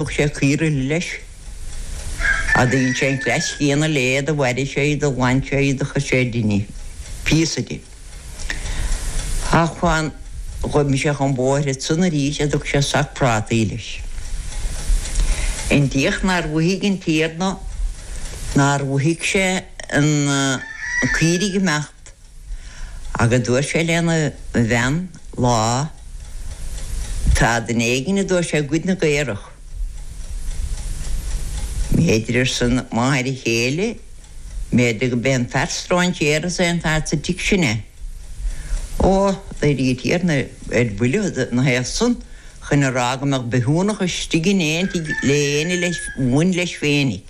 Thug sé caoirigh leis. Do dhein sé an cleas céanna léi, do mharaigh sé í, do ghlan sé í, do chuir sé ar dinnéar píosa di. Ach m'anam gur imigh sé chun bóthair ansan arís, go dtug sé sac prátaí leis. An diach nár mhothaigh an Tiarna, nár mhothaigh sé na caoirigh amach. Ach, agus dúirt sé lena bhean lá, tá duine éigin, a dúirt sé, ag goid na gcaorach. B'fhéidir, arsa an mháthair chéile, b'fhéidir go b'é an fear stróinséara san, an fear sa tigh sin é. Ó, d'éirigh an tiarna ar buile ina thaobh san, chun a rá go mbeadh bithiúnach istigh in aon tigh le héinne a bhain leis féinig.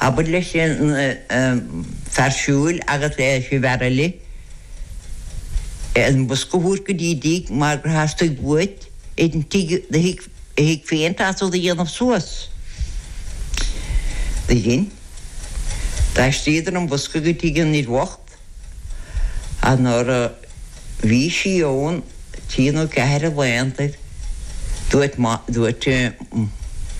Abair leis an bhfear siúil agus leis an bhfear eile an bosca a thabhairt go dtí a dtigh mar gur theastaigh uaidh é an tigh do thigh féin feasta a dhéanamh suas. Do dhein. D'aistríodar an bosca go tigh an fhir bhoicht. An uair a bhí sí ann, trí nó ceathair a laethanta, dúirt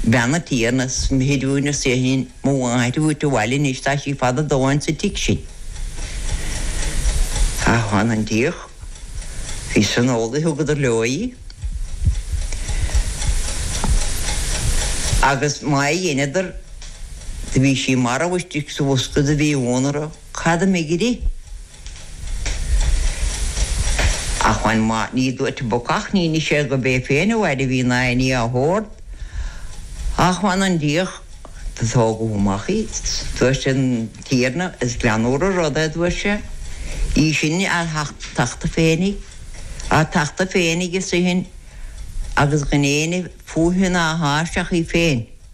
bean an tiarna, is mithid dúinn arsa í sin, mo mháthair a thabhairt abhaile anois, tá sí fada a dóthain sa tigh sin. Ach m'anam an diach, bhí san amhlaidh, thugadar leo í, agus má dheineadar do bhí sí marbh istigh sa bhosca. Do bhí ionadh orthu. Cad a d'imigh uirthi? Ach m'anam maith, ní dúirt an bacach, níor inis sé gob é féin a mhairbh í ná aon ní dá shórt. Ach m'anam an diach, do tógadh amach í. Dúirt an Tiarna, Is greannmhar an rud é, dúirt sé, í sin á tachtadh féinig, á tachtadh féinig istigh ann agus gan éinne fúithi ná thairsti ach í féin.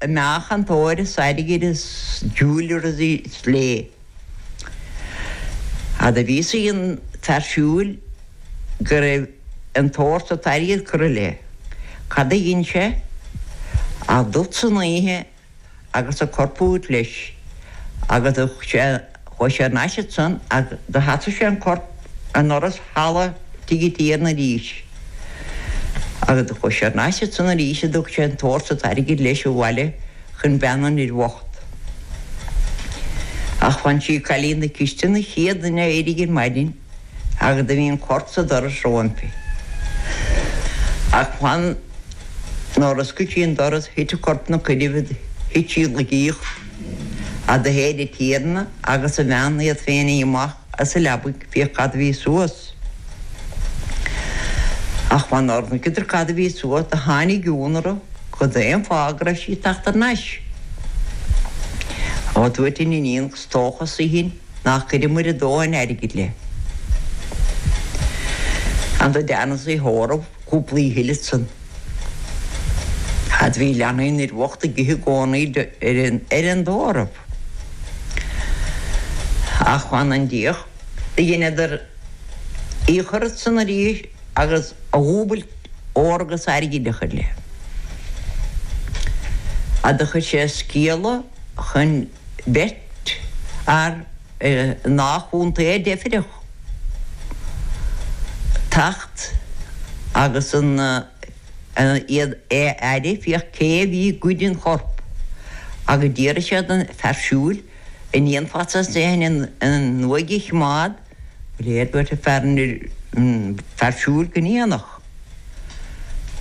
a mbeadh an t-ór is airgead is dual ré léi, fhad a bhí a fhios ag an bhfear siúil go raibh an t-ór is an t-airgead curtha léi. Cad a dhein sé ach dul san oíche agus an corp a thabhairt leis agus thug sé Chuaigh sé thar n-ais ansan agus do sheasaigh sé an corp i ndoras halla tigh an tiarna arís. Agus do chuaigh sé thar n-ais ansan arís go dtug sé an t-ór is an t-airgead leis abhaile chun bean an fhir bhoicht. Ach ansan is í cailín na cistine an chéad duine a éirigh ar maidin. Ach do bhí an corp sa doras roimpi. Ach amháin nuair a oscail sí an doras thuit an corp ina coinnibh do thuit sí i laige a do shéid an Tiarna agus a bhean iad féin amach as a leabaidh féach cad a bhí suas. Ach amháin nuair a thuigeadar cad a bhí suas do tháinig iongnadh orthu cad é an fáth go raibh sí ag teacht thar n-ais. Ó, dúirt an iníon, 'Is dócha, arsa í sin, Nár chuireamair a dóthain airgid léi. Agus do deineadh í a thórramh cúpla oíche eile ansan. Agus do bhí leanaí an fhir bhocht ag ithe i gcónaí ar an, ar an dtórramh. Ach fanann Dia. Do dheineadar í a chur ansan arís agus a dhúbailt óir agus airgid a chur léi. Agus do chuir sé scéala chun. beirt fhear i ndá chontae deifreach teacht agus an uaigh a fhaire féach cé a bhí ag goid an choirp agus d'fhiafraigh sé don fear siúil, an ndéanfadh sé sin an uaigh a chimeád? leo dúirt an fear siúil go ndéanfadh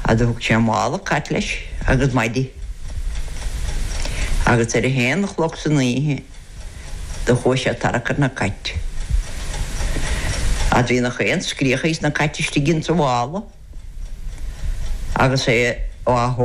a do thug sé mála cait leis agus maidí agus ar a haon a chlog san oíche do chuaidh sé ag tarrac na cait agus bhí nach aon scréach ages na cait istigh ins an mhála agus é á